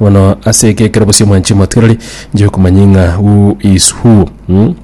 Bono ase eke ekero bosio mwanche mwatwerori, njoke komanya ng'a who is who mm?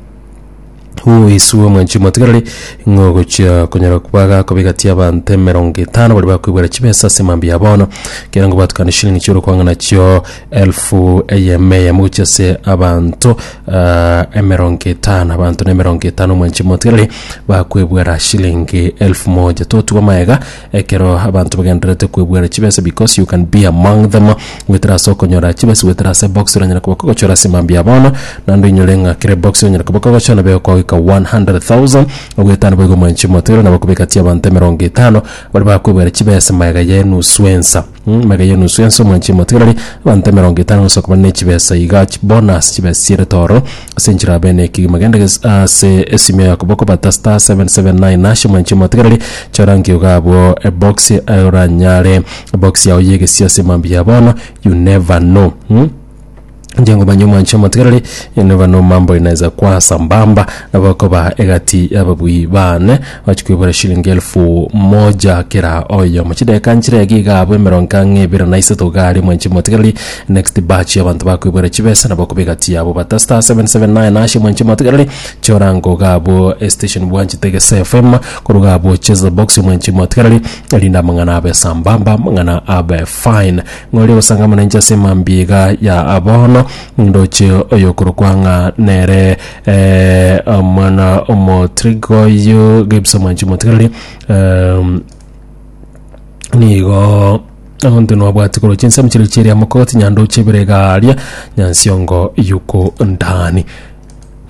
who is who mwanche mwatwerori ng'a ogochia konyara kwaga kobigatia abanto emerongo etano baria bakoibwera chibesa ase mambia ya bono kera ngo batukane shilingi chiore kwang'a nachio elfu eyemo eyemo gochia ase abanto ah, emerongo etano abanto na emerongo etano mwanche mwatwerori bakoibwera shilingi elfu moja totugwa maega Ekero abanto bagendererete kwebuera chibesa because you can be among them goetera ase okonyora chibesa goetera ase box oranyare koba kogochora ase mambia bono naende oinyore ng'a kera ebox onyare koba kogochora nabo ekogoika 100,000 ogoeta nabo igo mwanche omotoiro nabo kobeka ti abanto emerongo etano baria bakwebuera chibesa magega ya enusu ensa Mega y'enusu ense omwanche emotigarari, abanto emerongo etano gose okobana ne chibesa iga chi bonus chibesa chierete oro ase enchera abe ne ekegima genda ges- ase esimio ya okoboko bata star 779 hash omwanche emotigarari chora nkiuga abwo ebox oranyare ebox yao y'egesiase mambia bono you never know. Inche ngomanya omwanchi omotigareri, enoba nomambo inaeza koa sambamba nabo okoba egati y'ababui baane, ochi koibora shilingi elfu moja kera oyomo. Chidakika nchire iga iga abwo emerongo ang'e ebere na isato iga aria omwanchi omotigareri, next batch y'abanto bakoibora chibesa nabo okoba egati yabo. But star seven seven nine hash omwanchi omotigareri, chora nko iga abwo estation bwanchete Gese FM, korwa iga abwo cheza box omwanchi omotigareri, erinde amang'ana abe sambamba, amang'ana abe fine. Noria ogosangamana inche ase emambiga ya bono, nindoche oyokorokwa ng'a nere eh, omwana omotriga oyio, Gibbs Omwanchi Motigalari, em, nigo onto nobwati korwa chinsemo chiria chiria mokogoti nyandoche ebere iga aria nyansiongo yuko ndani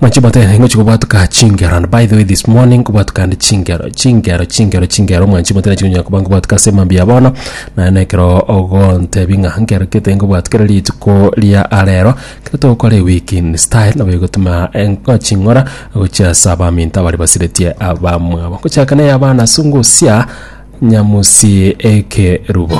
Mwanche mote eh, ngochi kobwatuka chingero and by the way this morning kobwatuka and chingero chingero chingero chingero mwanche mote nachi ngonyoka koba nkobwatuka ase emambia ya bono naye nekero ogontebi ng'a nkero kete nkobwatukere rituko ria arero ekero togokora ewiki in style nabo egotuma enko ching'ora gochia ase abaminto abare basiretie abamwabo ngochaka na eyabana ase ngosia nyamusi ekerubo